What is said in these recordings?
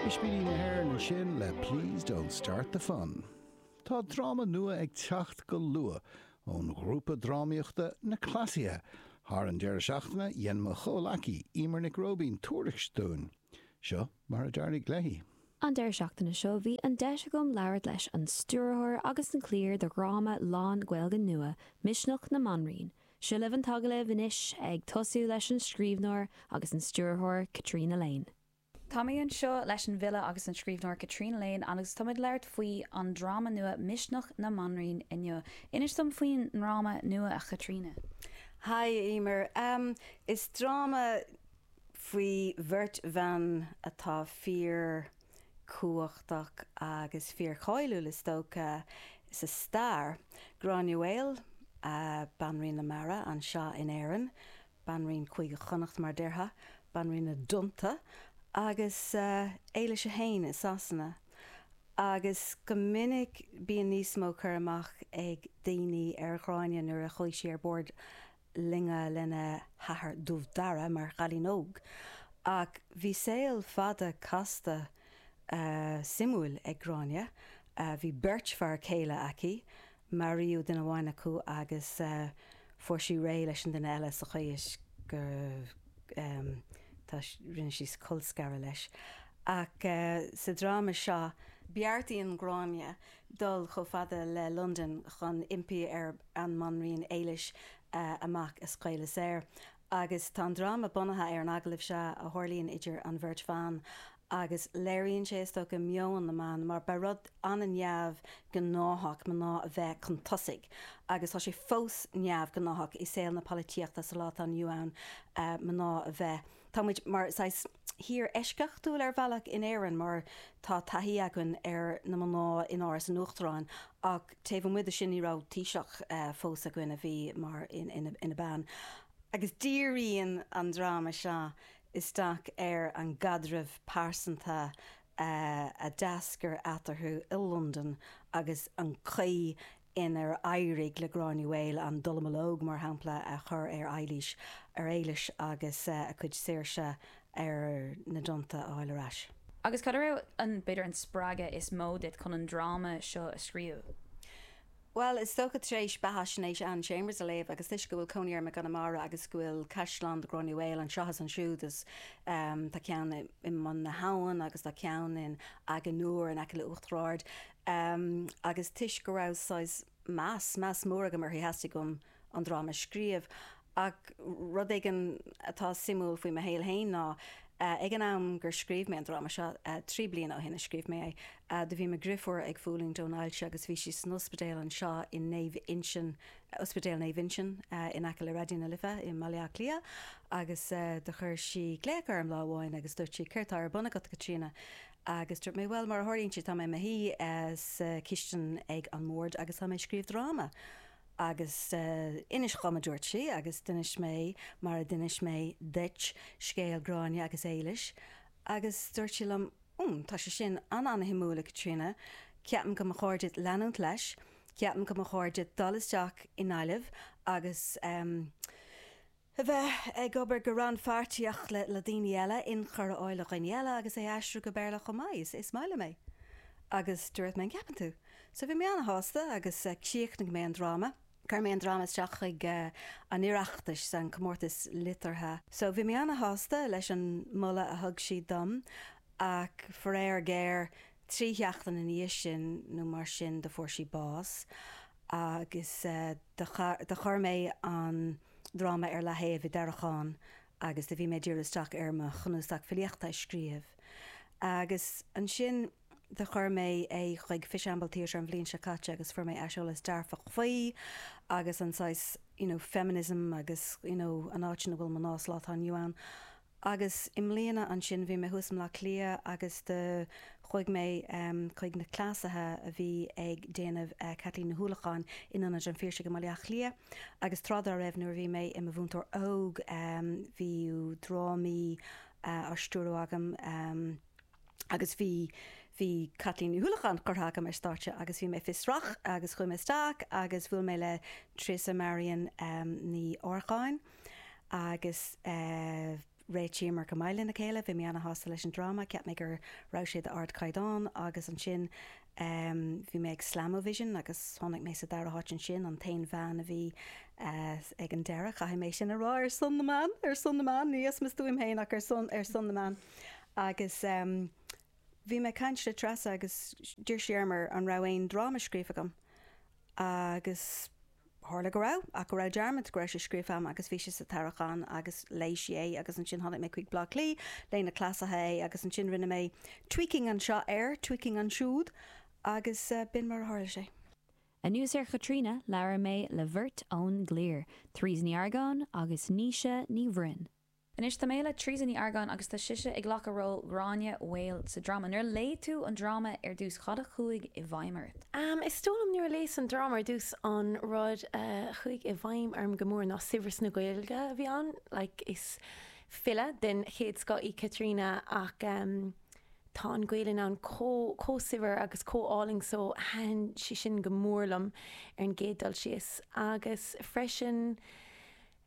Ispíní na hÉireann ansin le Please Don't Start the Fun. Tá dráma nua ag teacht go luath ón ghrúpa drámaíochta Na Cleasaithe. Thar an deireadh seachtaine, dhein mo chomhleacaí, Emer Nic Róibín, tuairisc dúinn. Seo mar a d'éirigh léi. An deireadh seachtaine seo, bhí an deis agam labhairt leis an stiúrthóir agus an cliar do dhráma lán-Ghaeilge nua, Misneach na mBanríon, Seo libh an t-agallamh anois, ag tosú leis an scríbhneoir agus an stiúrthóir Caitríona Lane. Tá mé anseo leis an bhfile agus an scríbhneoir Caitríona Lane agus táim ag labhairt faoi an dráma nua Misneach na mBanríon inniu. Inis dom faoin ndráma nua, a Chaitríona. Haigh, a Emer. Is dráma faoi bheirt bhan atá fíor. cumhachtach agus fíorcháiliúil is dócha sa stair, Gráinne Mhaol, Banríon na Mara anseo in Éirinn, Banríon Chúige Chonnacht mar a déarfá, Banríon na dTonnta, agus Éilis 1 i Sasana. Agus go minic bíonn níos mó cur amach ag daoine ar Ghráinne nuair a chuaigh sí ar bord loinge lena hathair Dubh Dara mar chailín óg ach bhí saol fada casta suimiúil ag Gráinne. Bhí beirt fear céile aici, maraíodh duine amháin acu agus fuair sí réidh leis an duine eile sa chaoi is go rinne sí colscaradh leis ach sa dráma seo, beartaíonn Gráinne dul chomh fada le Londain chun impí ar an mBanríon Éilis a mac a scaoileadh saor. Agus tá an dráma bunaithe ar an agallamh seo a tharlaíonn idir an bheirt bhan agus léiríonn sé, is dócha, meon na mban mar ba rud an-neamhghnáthach mná a bheith chun tosaigh agus tá sé fós neamhghnáthach i saol na polaitíochta sa lá atá inniu ann mná a bheith, tá muid mar saghas. thír eisceachtúil ar bhealach in Éirinn mar tá taithí againn ar na mná in Áras an Uachtaráin ach taobh amuigh de sin ní raibh Taoiseach fós againn a bhí mar ina bean agus díríonn an dráma seo isteach ar an gcaidreamh pearsanta a d'eascair eatarthu i Londain agus an chaoi inar éirigh le Gráinne Mhaol an dallamullóg, mar shampla, a chur ar Eilís, ar Éilis, agus a cuid saoirse ar na dtonnta a fháil ar ais. Agus cad a raibh, b'fhéidir, an spreagadh is mó duit chun an dráma seo a scríobh? Bhuel, is dócha, tar éis beathaisnéis Anne Chambers a léamh, agus toisc go bhfuil cónaí orm i gConamara agus go bhfuil caisleán de Ghráinne Mhaol anseo agus ansiúd, is tá ceann i mBun na hAbhann agus tá ceann in Aughnanure in aice le Uachtar Ard, Am, agus toisc go raibh saghas meas, meas mór agam uirthi, theastaigh uaim an dráma a scríobh. Ach rud éigin atá suimiúil faoi mo shaol féin ná, ag an am gur scríobh mé an dráma seo, trí bliana ó shin a scríobh mé é, do bhí mo dhriofúr ag fulaingt ón ailse agus bhí sí san ospidéal anseo i Naomh Uinseann, Ospidéal Naomh Uinseann in aice le Raidió na Life i mBaile Átha Cliath, agus do chuir sí glaoch orm lá amháin agus dúirt sí, 'Céard tá ar bun agat, a Chaitríona? Agus dúirt mé, bhuel, mar a tharlaíonn sé, tá mé i mo shuí sa chistin ag an mbord agus tá mé ag scríobh dráma. Agus inis dhom, a dúirt sí, agus d'inis mé, mar a d'inis mé duit, scéal Gráinne agus Éilis. Agus dúirt sí liom, mm, tá sé sin an-an-shuimiúil, a Chaitríona, ceapaim go mba chóir duit leanúint leis, ceapaim go mba chóir duit dul isteach i nGaillimh agus, em, A bheith ag obair go rannphairtíoch le daoine eile, inchur a fháil ó dhaoine eile agus é a aistriú go Béarla chomh maith, is maith liom é. Agus dúirt mé an gceapann tú? So bhí mé ana-shásta agus chríochnaigh mé an dráma, chuir mé an dráma isteach chuig an Oireachtas, an comórtas liteartha. So bhí mé ana-shásta leis an moladh a thug siad dom ach faraor géar trí sheachtain ina dhiaidh sin nó mar sin do fuair sí bás agus do chuir mé an dráma ar leathaobh i dtarraiceán agus do bhí mé ag díriú isteach ar mo chnuasac filíochta a scríobh agus ansin do chuir mé é chuig Fishamble Theatre an bhliain seo caite agus fuair mé aiseolas dearfach faoi agus an saghas you know feminism agus you know an áit ina bhfuil mná sa lá atá inniu ann Agus i mbliana ansin, bhí mé thuas i mBleá Cliath agus do chuaigh mé chuig na cleasaithe a bhí ag déanamh Caitlín Ní hUallacháin in Ionad an Phiarsaigh i mBaile Átha Cliath. Agus tráth dá raibh, nuair a bhí mé i mo mhúinteoir óg, bhí drámaí á stiúrú agam agus bhí bhí Caitlín Ní hUallacháin curtha agam ar stáitse agus bhí mé fiosrach agus chuaigh mé isteach agus bhuail mé le Treasa Marian Ní Argáin. agus réitíomar go maith lena chéile. Bhí mé ana-shásta leis an dráma, cheap mé go raibh sé d'ardchaighdeán, agus ansin bhí mé ag Slam-O-Vision agus tháinig mé sa dara háit ansin, an t-aon bhean a bhí ag an deireadh, caithfidh mé sin a rá, ar son na mban, ar son na mban, ní as mo stuaim féin ach ar son, ar son na mban. Agus bhí mé ag caint le Treasa agus d'iarr sí orm ar, an raibh aon dráma scríofa agam Agus tharla go raibh, ach go raibh dearmad go raibh sé scríofa agam agus bhí sé sa tarraiceán agus léigh sí é agus ansin tháinig mé chuig Bleá Cliath, léigh na cleasaithe é agus ansin rinne mé tweaking anseo air, tweaking ansiúd agus b'in mar a tharla sé. Anuas ar Chaitríona, labhair mé le bheirt ón gcliar, Therese Ní Argáin agus Naoise Ní Bhroin. Anois tá mé le Teresa Ní Argáin agus tá sise ag glacadh ról Ghráinne Mhaol sa dráma. Nuair a léigh tú an dráma ar dtús, cad a chuaigh i bhfeidhm ort? Is dóigh liom nuair a léas an dráma ar dtús, an rud a chuaigh i bhfeidhm orm go mór ná saibhreas na Gaeilge a bhí ann. Like, is file den chéad scoth í Caitríona ach tá an Ghaelainn ann chomh, chomh saibhir agus chomh álainn so thaitin sé sin go mór liom ar an gcéad dul síos agus freisin,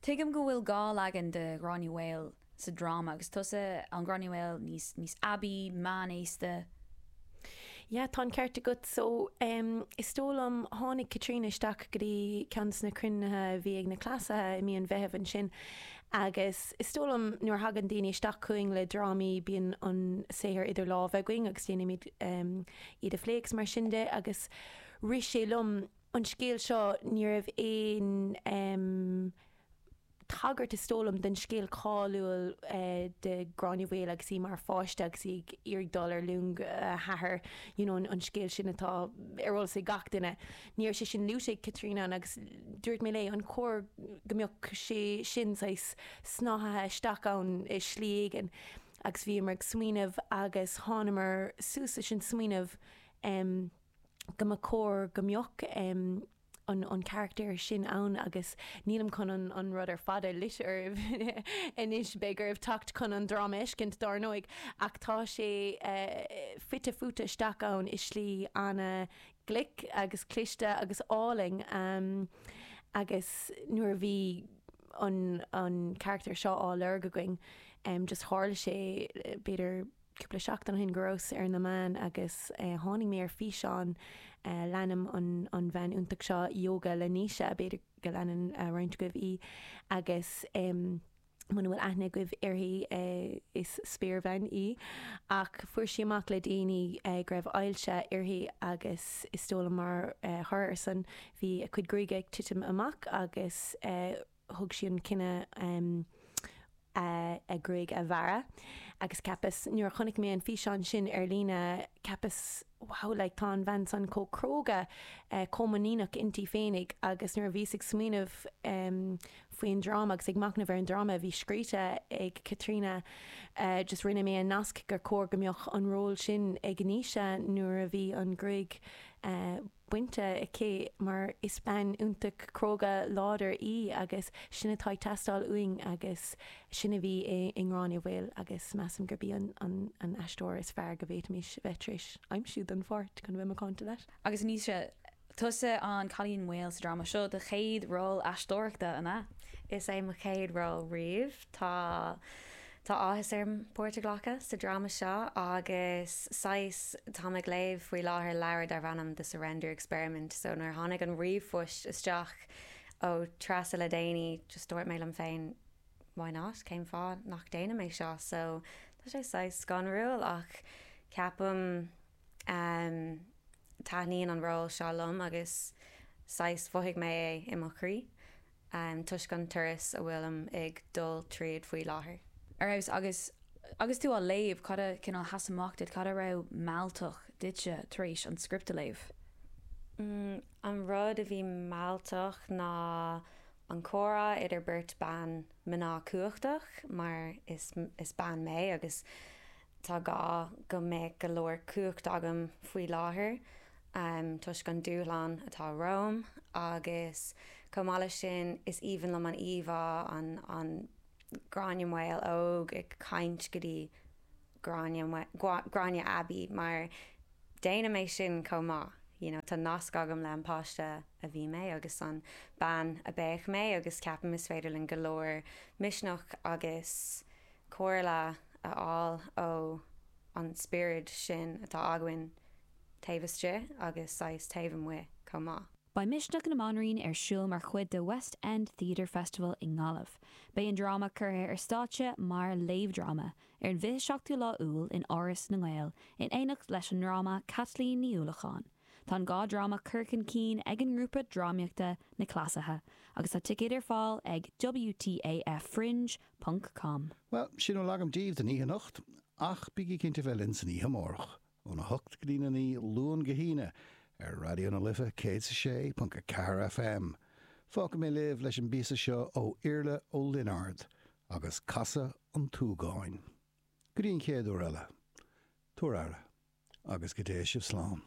Tuigim go bhfuil dhá leagan de Ghráinne Mhaol sa dráma, agus tusa an Gráinne Mhaol níos, níos aibí, meánaosta. Yeah, tá an ceart agat. So, em, is dóigh liom, tháinig Caitríona isteach go dtí ceann de na cruinnithe a bhí ag na Cleasaithe i mí an Mheithimh ansin agus is dóigh liom nuair a thagann daoine isteach chugainn le drámaí, bíonn an saothar idir lámha againn agus déanaimid, em, iad a phlé agus mar sin de agus rith sé liom, an scéal seo, ní raibh aon tagairt, is dóigh liom, don scéal cáiliúil de Ghráinne Mhaol agus í mar pháiste agus í ag iarraidh dul ar long a hathar, you know an scéal sin atá ar eolas ag gach duine. Ní raibh sé sin luaite ag Caitríona ann agus dúirt mé léi, an cóir go mbeadh sé sin saghas snáthaithe isteach ann i slí éigin? Agus bhíomar ag smaoineamh agus thánamar suas leis an smaoineamh. go mba chóir go mbeadh an carachtar sin ann agus nílim chun an rud ar fad a loit oraibh anois, beidh oraibh teacht chun an dráma a fheiscint dár ndóigh, ach tá sé fite fuaite isteach ann i slí ana-ghlic agus cliste agus álainn agus nuair a bhí an carachtar seo á lorg againn just tharla sé b'fhéidir, cúpla seachtain ó shin go rabhas ar na meáin agus tháinig mé ar físeán leanaim an bhean iontach seo ióga le Naoise, b'fhéidir go leanann roinnt agaibh í agus muna bhfuil aithne agaibh uirthi is spéirbhean í ach fuair sí amach le déanaí go raibh ailse uirthi agus is dóigh liom mar thoradh ar san bhí a cuid gruaige ag titim amach agus thug sí an cinneadh a gruaig a bhearradh agus ceapas nuair a chonaic mé an físeán sin ar líne ceapas wow like tá an bhean san chomh cróga chomh muiníneach inti féinig agus nuair a bhíos ag smaoineamh faoin dráma agus ag machnamh ar an dráma a bhí scríte ag Caitríona just rinne mé an nasc gur chóir go mbeadh an ról sin ag Naoise nuair a bhí an gruaig bainte aici, mar is bean iontach cróga láidir í agus sin atá ag teastáil uainn agus sin a bhí i nGráinne Mhaol agus measaim gurb í an aisteoir is fearr go bhféadfaimis bheith tar éis aimsiú don pháirt, chun a bheith macánta leat. Agus anois, tusa an cailín maol sa dráma seo, do chéad ról aisteoireachta, an ea? Is é mo chéad ról riamh. Tá. Tá áthas orm páirt a ghlacadh sa dráma seo agus saghas, táim ag léamh faoi láthair leabhar darb ainm The Surrender Experiment so nuair a tháinig an ríomhphoist isteach ó Treasa le déanaí just dúirt mé liom féin why not, cén fáth nach déanaim é seo so tá sé saghas scanrúil ach ceapaim ehm taitníonn an ról seo liom agus saghas mhothaigh mé é i mo chroí. toisc an turas a bhfuilim ag dul tríd faoi láthair. Ar fheabhas! Agus agus tú á léamh, cad a chineál a sheas amach duit, cad a raibh mealltach duitse tar éis an script a léamh? An rud a bhí mealltach ná an comhrá idir beirt bhan, mná cumhachtach, mar is is bean mé, agus Tá gá go mbeadh go leor cumhacht agam faoi láthair toisc an dúshlán atá romham agus chomh maith leis sin is aoibhinn liom an íomhá an Gráinne Mhaol óg ag caint go dtí Gráinne aibí mar déanaim é sin chomh maith you know tá nasc agam le an páiste a bhí mé agus an bean a bheidh mé agus ceapaim is féidir linn go leor misneach agus comhairle a fháil ó an spiorad sin atá againn taobh istigh agus saghas taobh amuigh chomh maith. Beidh Misneach na mBanríon ar siúl mar chuid de West End Theatre Festival i nGaillimh. Beidh an dráma curtha ar stáitse mar léamhdhráma ar an bhfiche seachtú lá Iúil in Áras na nGael in éineacht leis an ndráma Caitlín Ní Uallacháin. Tá an dhá dráma curtha chun cinn ag an ngrúpa drámaíochta Na Cleasaithe agus tá ticéid ar fáil ag WTAFFringe.com. ponc com. Bhuel, sin a bhfuil agam díbh don oíche anocht, ach bígí cinnte bheith linn san oíche amárach, óna hocht go dtína naoi, Luan go hAoine, ar Raidió na Life 106.4 FM. Fágfaidh mé sibh leis an bpíosa seo ó Iarla Ó Lionáird agus Casadh an tSúgáin. Go dtí an chéad uair eile, tabhair aire, agus go dté sibh slán.